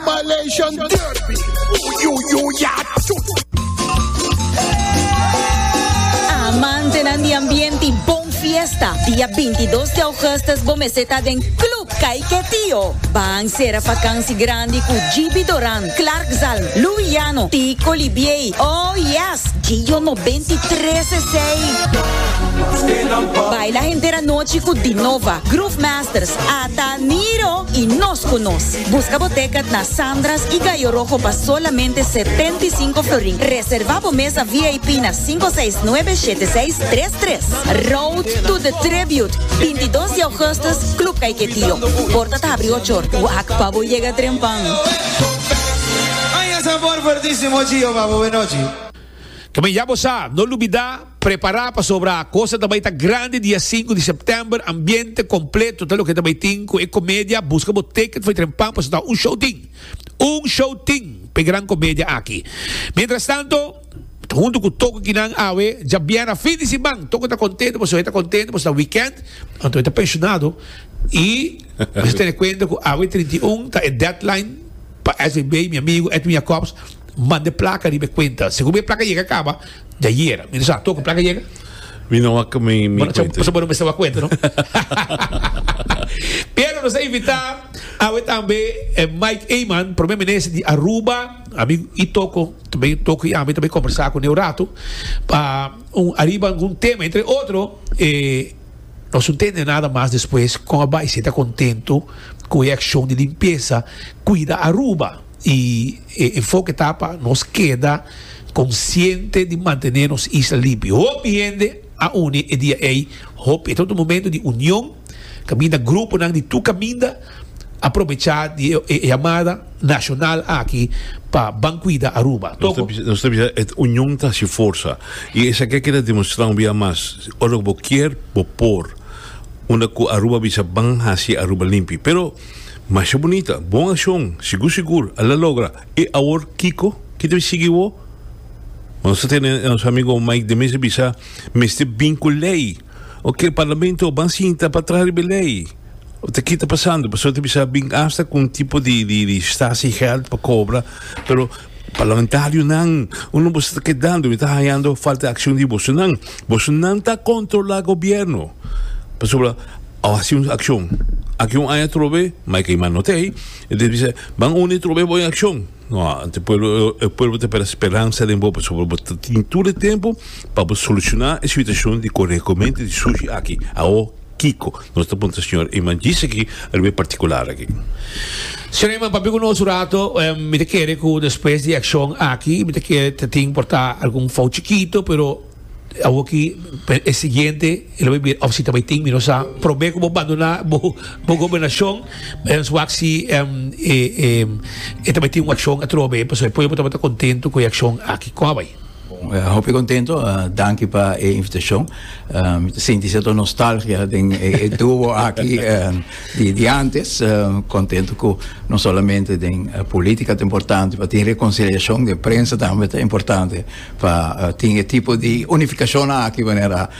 Malaysian Derby, Amantenan di ambiente y bon fiesta, dia bintidos di augustus bo mester ta den Club Kaiketio. Ban cera vakantie grandi cu Jibi Doran, Clark Zalm, Lou Llano, Tico Libiey, oh yes! Gio no benti tres esey. Baila henter anochi cu Dinova, Groove Masters, Ta miro y nos cu nos. Busca bo tecket na Sandras y Gallo Rojo pa solamente setenta y cinco florin. Reserva bo mesa VIP na cinco seis nuebe shete seis tres tres. Road to the Tribute, binti dos di Augustus, Club Caiquetío. Porta ta habri ocho or. Wak pa bo yega trempan. Kibida ya bo sa, no lubida. Prepará pasobra kos a ta bai ta grandi dia sinku di sèptèmber, ambiente kompleto ta loke ta bai tin ku e komedia, buska bo ticket for Trempan pasobra ta un show tin, un show tin pa e gran komedia aki. Mientrastanto, ta huntu ku tokon kinan awe djabièrnè fin di siman, tokon ta kontento pasobra e ta kontento pasobra ta wikènt, anto e ta penshonado i mester tene kuenta ku awe trinta i un ta e deadline pa SVB, mi amigu Edwin Jacobs manda e plaka riba e kuenta, segun mi e plaka yega kaba. Ya yera. Mi ta sa, toko plaka yega? Mi no a mi, mi Bueno, sa, cuenta. sa bueno mester a cuenta, no? Pero nos a invita awe tambe eh, Mike Eman, primer minister di Aruba, ami i toko, tambe toko i ami tambe conversa cu neu rato, pa un arriba algun tema, entre otro, eh, nos no tende nada mas despues con a bai si ta contento cu e accion di limpieza, cuida Aruba. Y e enfoke ta pa nos keda consciente di mantene nos isla limpio. Hopi hende a uni e dia ey, hopi. E ta un momento di union, caminda gruponan di tur caminda a probecha di e yamada nacional aki pa ban cuida Aruba. Toco. Nos ta bisa e union ta haci forza. Y esaki a keda demonstra un bia mas. Ora cu bo kier, bo por. Unda cu Aruba bisa ban haci Aruba limpi. Pero. Masha bunita, bon accion, sigur sigur a la logra, e awor kico ki ta bin sigui wo? Ma nos ta tene nos amigo Mike de mester bisa mester bin cu ley, ok e parlamento ban sinta pa traha riba e ley, ta kita pasando pasobra ta bisa bin asta cu un tipo di di di stasi geld pa cobra, pero parlamentarionan uno boso ta kedando mi ta hañando falta accion di bosonan. Bosonan ta controla gobierno. Pasobra a haci un accion. Aki un aña trobe, mai key man no te ey. E ta bisa, ban uni trobe bo en accion. No, e pueblo, e pueblo ta pera speransa den bo, pasobra bo ta tin tur e tempo pa bo soluciona e situacion di corecomente di sushi aki. Awo. Kiko? Nos ta puntra, Señor, e manjis aki a riba e particular aki. Señor, e man papia cu nos un rato. Mi ta kere cu despues di e accion aki, mi ta kere ta tin por ta algun fout chikito, pero awor aki pa e siguiente e lo bai bira of si ta bai tin, mi no sa. Probe cu bo banduna bo, bo gobernacion, mens wak si e ta bai tin un accion atrobe, pasobra e pueblo tabata contento cu e accion aki. Con a bai? Bon, hopi contento, danki pa e invitacion. Mi ta sinti cierto nostalgia den e duo aki di, di antes. Contento cu no solamente den politica ta importante, pa tin reconciliacion den prensa tambe ta importante, pa tin e tipo di unificacionnan aki manera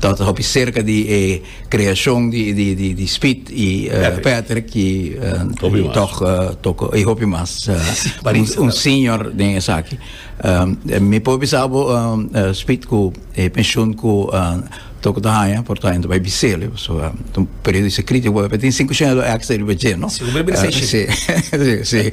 Tabata hopi serka di e kreashon di Speed i Patrick ki tòg toko i hopi mas. Un senior den esaki. Mi por bisa bo Speed ku e penshun ku toko ta haña por ta haña ta bai bisele pasobra ta un periodo di sakrifiko bo tin sinku shina lo ekstra riba dje no. Si un bes bira seis shina. Si.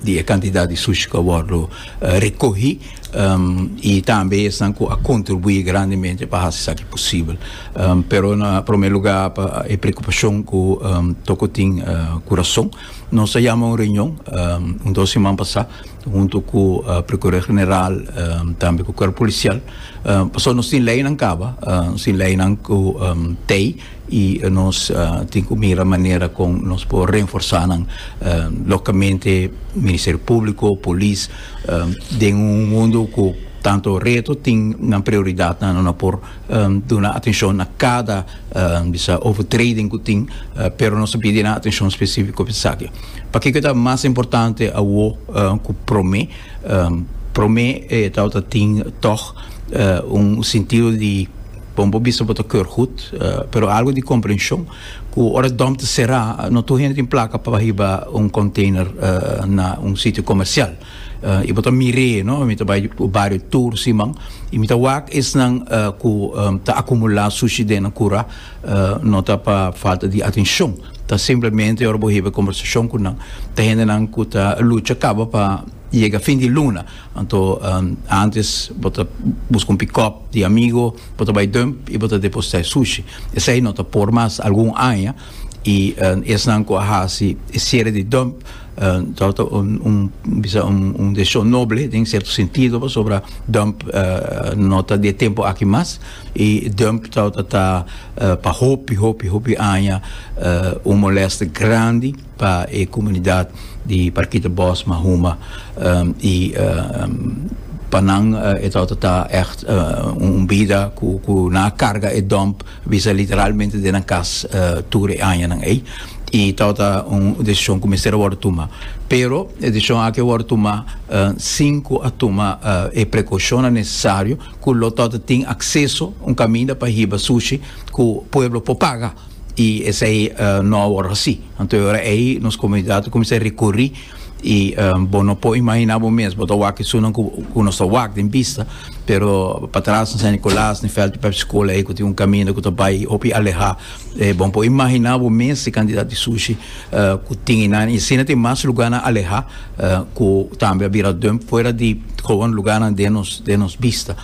di e cantidad di sushi cu a wordo recohi y tambe esnan cu a contribui grandemente pa haci esaki posibel pero na prome lugar pa e preocupacion cu toco tin cu rason nos a yama un reunion un dos siman pasa hunto cu Procurador General tambe cu Cuerpo Policial pasobra nos tin leynan caba nos tin leynan cu tey. y nos tin cu mira manera con nos por reenforsa nan locamente Ministerio Publico, Polis, den un mundo cu tanto reto tin nan prioridad nan no por duna atencion na cada bisa overtreding cu tin pero nos ta pidi nan atencion specifico pa esaki. Pakico e ta mas importante awo cu prome? Prome e tawata tin tog un sentido di. Bon bo bisa bo ta keur goed, pero algo di comprension cu ora dump ta cera no tur hende tin placa pa hiba un container na un sitio comercial. Y bo ta mire, no, mi ta bay bario tur siman y mi ta wak esnan cu ta acumula sushi den nan cura, no ta pa falta di atencion, ta simplemente ora bo hiba e conversacion cu nan ta hendenan cu ta lucha caba pa yega fin di luna. Anto antes bo ta busca un pickup di amigo, bo ta bay dump y bo ta deposita e sushi. Esey no ta por mas algun aña y esnan cu a haci e cierre di dump ta ta un bisa un decision noble den cierto sentido pasobra dump no ta di e tempo aki mas y dump ta ta pa hopi hopi hopi aña un molesta grandi. pa e comunidad di Parkita Bos, Mahuma, y pa nan e ta ota ta echt un bida cu cu nan a carga e dump bisa literalmente den nan cas tur e añanan ey y ta ota un decision cu mester a wordo tuma pero e decision aki a wordo tuma sin cu a tuma e precaucionnan necesario cu lo ta ota tin acceso un caminda pa hiba sushi cu pueblo por paga. y esey no a wor haci. Anto e ora ey nos comunidad a cuminsa recurri y bo no por imagina bo mes bo ta wak esunnan cu nos ta wak den bista pero patras na San Nicolas den Veld Pepsi School ey cu tin un caminda cu ta bay hopi aleha bo no por imagina bo mes e cantidad di sushi cu tin einan y asina tin mas lugarnan aleha cu tambe a bira dump fuera di gewoon lugarnan den nos bista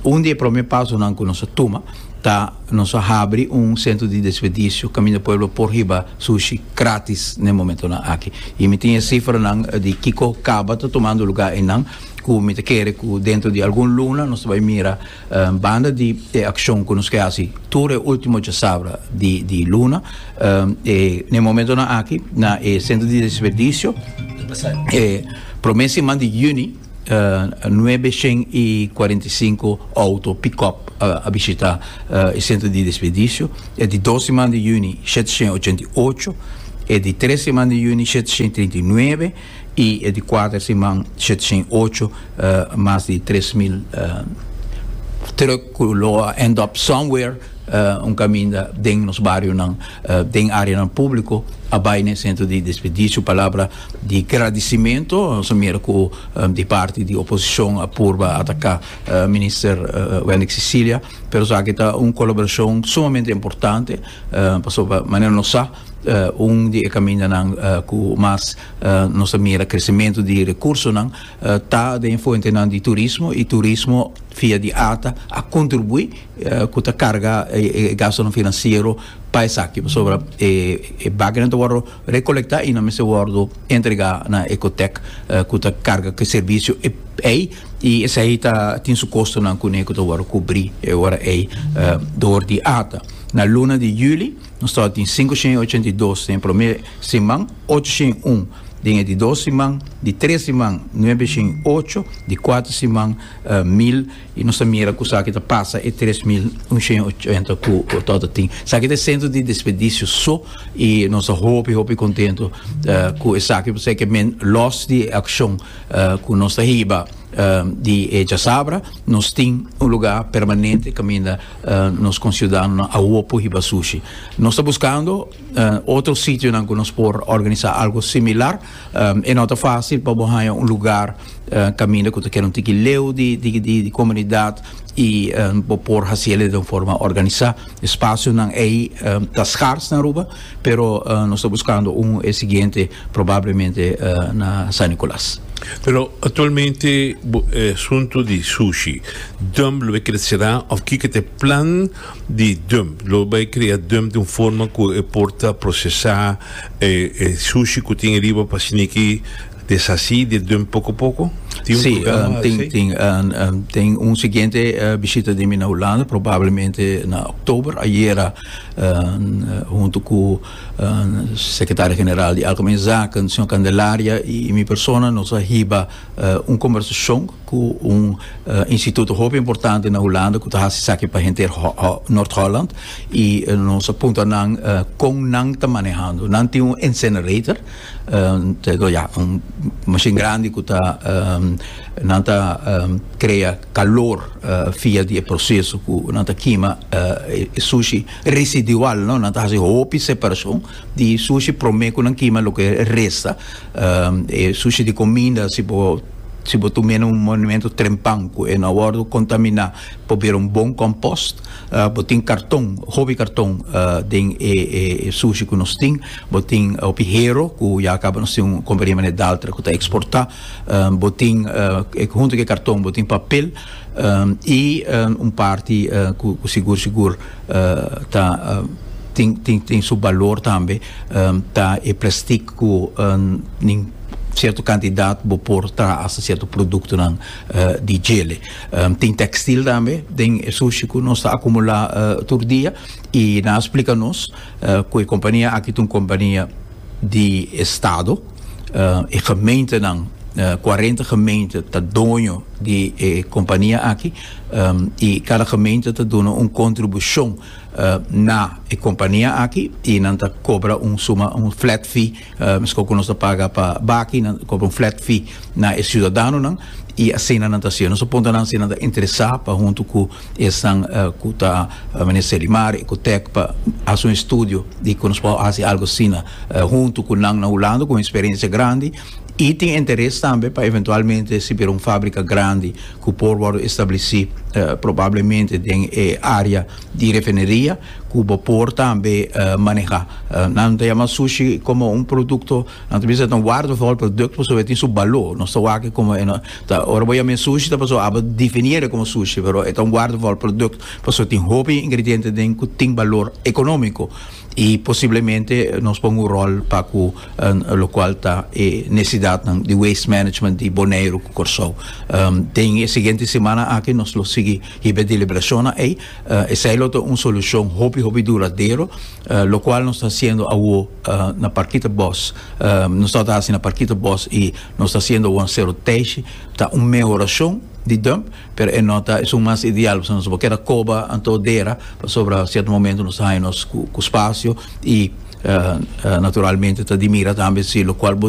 un di e prome pasonan cu nos a tuma Ta nos a habri un sentro di despedicio caminda pueblo por hiba sushi gratis n'e momentonan aki. Y mi tin e cifranan di kico caba ta tomando lugar einan cu mi ta kere cu dentro di algun luna nos ta bay mira banda di e accion cu nos ke haci tur e ultimo djasabra di di luna e n'e momentonan aki na e centro di despedicio e prome siman di juni. Nuebe shen i kuarenta i sinku outo pick-up a bishita e sentro di desperdisio, e di dos siman di yüni shete shen ochenta i ocho, e di tres siman di yüni shete shen trinta i nuebe i e di kuater siman shete shen ocho, mas di tres mil trùk ku lo a end up somewhere. un caminda den nos barionan den areanan publico a bay na e centro di despedicio palabra di gradicimento nos a mira cu di parti di oposicion a purba ataca minister Wendy Cecilia pero esaki ta un colaboracion sumamente importante pasobra manera nos sa un di e camindanan cu mas nos a mira crecimento di recursonan ta den fuentenan di turismo y turismo via di ata a contribui ku ta karga e gastunan finansiero pa esaki pasobra e baganan ta wòrdu rekolektá i nan mester wòrdu entregá na Ecotec ku ta karga ku e servisio ei i esei ta tin su kostonan kuné ku ta wòrdu kubrí e ora ei dor di ata na luna di yüli nos tabata tin sinku shen i ochenta i dos den e promé siman ocho shen i un den e di dos siman di tres siman nuebe shen i ocho di kuater siman mil y nos ta mira cu sa ki ta pasa e tres mil unshen ochenta cu Torto tin. Sa ki ta e centro di despedicio so y nos ta hopi hopi contento cu esaki pasobra que men los di e accion cu nos ta hiba di e Chasabra nos tin un lugar permanente caminda nos conciudadanonan awor por hiba sushi. Nos ta buscando otro sitionan cu nos por organiza algo similar. E no ta facil pa bo haya un lugar uh, caminda cu ta keda un tiki leu di, di, di, di comunidad y uh, bo por haciele de un forma organisa. Espacionan ei uh, ta schaars na Aruba, pero uh, nos ta buscando un e siguiente probablemente uh, na San Nicolas. Pero actualmente eh, asunto di sushi, dump lo crecerá of kike te plan di dump lo vai crea dump de un forma cu e porta procesar eh, eh, sushi cu tin riba pa siniki Deshasí di dun poco poco? Tin un programa así? Sí, tin, tin. Tin un siguiente bishita di mi na Hulanda, probablemente na oktober. Ayera huntu cu Secretario General di Algemene Zaken, señor Candelaria, i mi persona nos a hiba un combersacion cu un instituto hopi importante na Hulanda cu ta haci esaki pa henter Noord-Holland. I nos a puntra nan con nan ta manehando. Nan tin un incinerator. Tego ya un mashin grandi cu ta nan ta crea calor via di e proceso cu nan ta kima e sushi residual no nan ta haci hopi separacion di sushi prome cu nan kima loke resta e sushi di cominda si bo si bo tu mena un monumento trempan cu e no a wordo contamina por bira un bon compost Uh, bo tin karton, hopi karton uh, den e, e, e sushi ku nos tin. Bo tin uh, hopi hero ku ya akaba nos tin un kompania mané Daltra ku ta eksportá. Um, bo tin uh, e, hunto ke karton bo tin papel um, i um, un parti uh, ku, ku sigur sigur uh, ta uh, tin tin tin su balor tambe um, ta e plastik ku um, nin cierto cantidad bo por traha hasta cierto productonan uh, di gele. Tin textil tambe den e sushi cu nos ta acumula tur dia y nan a splica nos cu e compania aki ta un compania di estado, e gemeentenan, cuarenta gemeente ta doño di e compania aki y cada gemeente ta duna un contribucion na e compania aki y nan ta cobra un suma, un flat fee. Meskor ku nos ta paga pa baki nan ta kobra un flat fee na e siudadanonan i asina nan ta haciendo. Nos ta punta nan si nan ta interesá pa huntu ku esnan ku ta Minister di Mar, Ecotec pa haci un estudio di ku nos por haci algo asina huntu ku nan na Hulanda ku un experiencia grandi i tin interes tambe pa eventualmente si bira un fábrica grandi ku por wòrdu establecí probablemente den e área di refinería. cu bo por tambe maneha. Nan ta yama sushi como un producto, nan ta bisa ta un waardevol product pasobra e tin su balo. Nos ta wak e como e no ta, ora bo yama e sushi ta pasobra abo definia e como sushi, pero e ta un waardevol product pasobra tin hopi ingrediente den cu tin balor economico y posiblemente nos pon un rol pa cu locual ta e necesidadnan di waste management di Boneiru cu Corsou. Den e siguiente semana aki nos lo sigui hiba e deliberacionnan ey. Esei lo ta un solushon hopi hopi duradero, lokual nos ta hasiendo awo na Parkita Bos. Nos tabata hasi na Parkita Bos i nos ta hasiendo awo na Sero Teishi. Ta un mehorashon di dump, pero e no ta esun mas ideal pasobra nos a por keda koba anto dera pasobra sierto momento nos ta haña nos ku spasio i naturalmente ta di mira tambe si lokual bo.